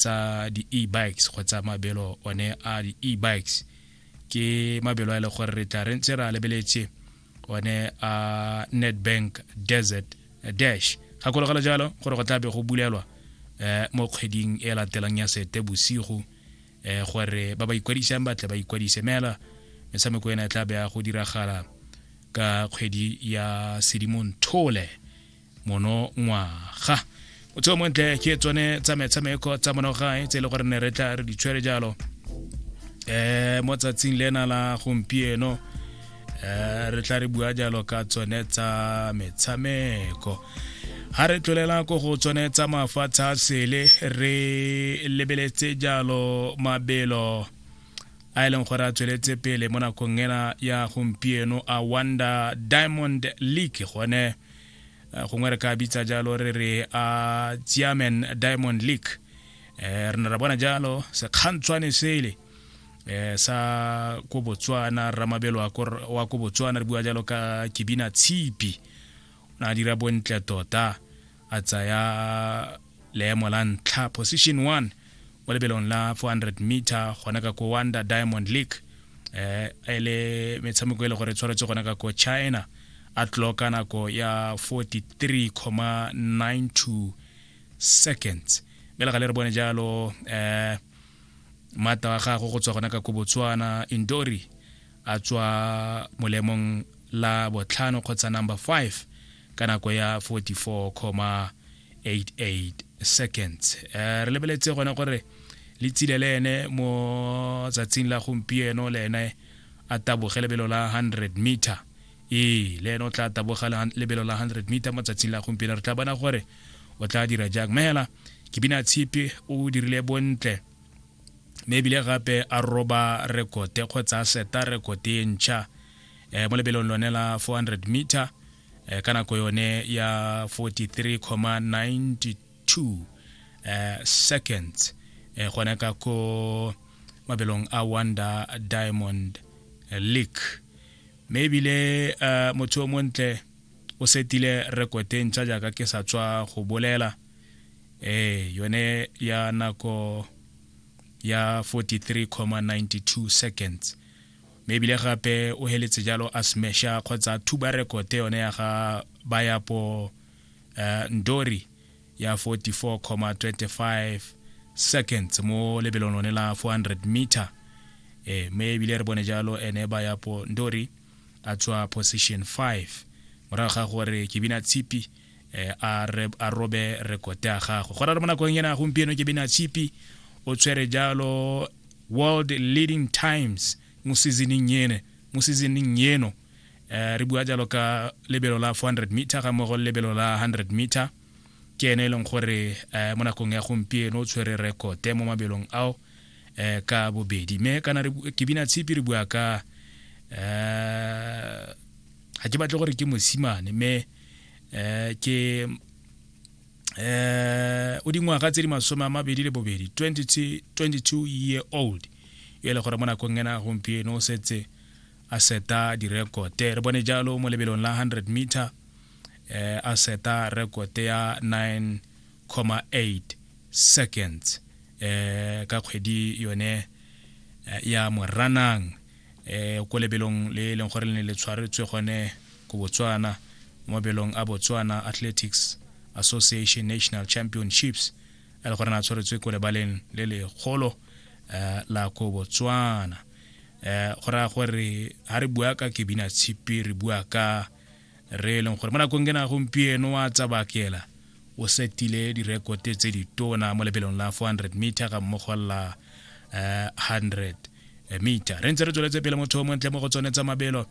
tsa di-e-bikes kgotsa mabelo one a di-e-bikes ke mabelo a e le gore re tla re ntse re a lebeletse one a netbank desert dash gakologelo jalo gore go tlabe go bulelwa um mo kgweding e latelang ya sete bosigo um gore ba ba ikwadisang batle ba ikwadise mela metshameko ena e tla be ya go diragala ka kgwedi ya sedimong thole monongwaga o tseo montle ke tsone tsa metshameko tsa monogae tse e le gore ne re tla re di tshwere jalo um mo tsatsing lena la gompieno um re tla re bua jalo ka tsone tsa metshameko ga re tlolela ko go tsone tsa mafatshe a sele re lebeletse jalo mabelo a e leng gore a tsweletse pele mo nakong ena ya gompieno a wonder diamond league gone eh, gongwe re ka bitsa jalo re re a ah, tsiamen diamond league eh, re ne ra bona jalo sekgantshwane sele eh, sa ko botswana ramabelo wa ko botswana re bua jalo ka kebina tshipi o ne a dira bontle tota a tsaya leemo la ntlha position one mo lebelong la 400 meter gona ka ko wanda diamond league eh e le metshameko e le gore tshwaretse gona ka ko china a tloka nako ya 43,92 seconds mme le ga le re bone jalo eh mata wa gago go tswa gona ka ko botswana indori a tswa molemong la botlhano kgotsa number 5 ka nako ya 44,88 seconds eh, re lebeletse gone gore le tsile le ene mo tsatsing la gompieno le ene a taboge lebelo la 100 meter ee le ene o tla taboga lebelo la 100 meter mo tsatsing la gompieno re tla bona gore o tla dira jang mme hela ke bina tshipi o dirile bontle mme ebile gape a roba rekote kgotsa a seta rekote e ntšha eh, mo lebelong lone la 400 meter eh, ka nako yone ya 43,92 eh, seconds eh, gone ka ko mabelong a wonder diamond eh, league mme ebile eh, motho o montle o setile rekote ntšha jaaka ke sa tswa go bolela eh yone ya nako ya 43,92 seconds mme ebile gape o heletse jalo a smesha kgotsa a thuba rekote yone ya ga bayapo uh, eh, ndori ya 44,25 seconds mo lebelong lone la 400 meter eh me ebile re bone jalo ene ba ya po ndori a tswa position 5 morago ga gore ke bina tshipi eh, a, re, a robe rekote ya gago go rare mo nakong ena gompieno ke bena chipi o tshwere jalo world leading times mo seasoning ene mo seasoning eno eh, re bua jalo ka lebelo la 400 meter ga mogo lebelo la 100 meter ke ene e leng gore eh, mo nakong ya gompieno o tshwere rekote mo mabelong ao eh, ka bobedi mme kana ke bina tshipi re bua ka eh, ga ke batle gore ke mosimane mme eh ke eh o dingwaga tse di masome a mabedi le bobedi 22 year old yo e le gore mo nakong ena gompieno o setse a seta direkote re bone jalo mo lebelong la 100 meter eh, a seta rekote ya 9,8 seconds eh, ka kgwedi yone eh, ya moranang um ko lebelong le e leng gore le ne le tshwaretswe gone ko botswana mo mabelong a botswana athletics association national championships a le gore na tshwaretswe ko lebaleng le legolo um eh, la ko botswana um go raya gore ga re bua ka kebina tshipi re bua ka re e leng gore mo nakong ena gompieno wa tsabakela o setile direkote tse di tona mo lebelong la 400 meter ga mmogo la uh, eh, 100 eh, meter re ntse re tsweletse pele motho o montle mo go tsone tsa mabelo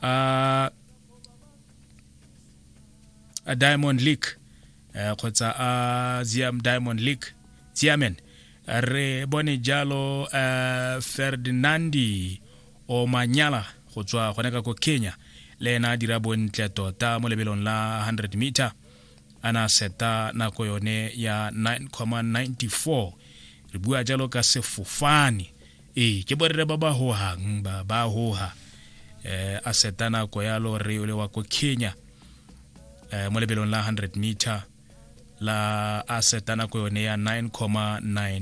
a uh, a diamond league eh, kgotsa uh, a ziam diamond league ziamen re bone jalo uh, ferdinandi Omanyala go tswa gone ka ko Kenya le ena a dira bontle tota mo lebelong la 100 meter a na seta nako yone ya 9,94 re bua jalo ka sefofane ee ke borre ba ba hohang ba ba hoha eh, a seta nako ya lo re ole wa ko Kenya eh, mo lebelong la 100 meter la a seta nako yone ya 9,94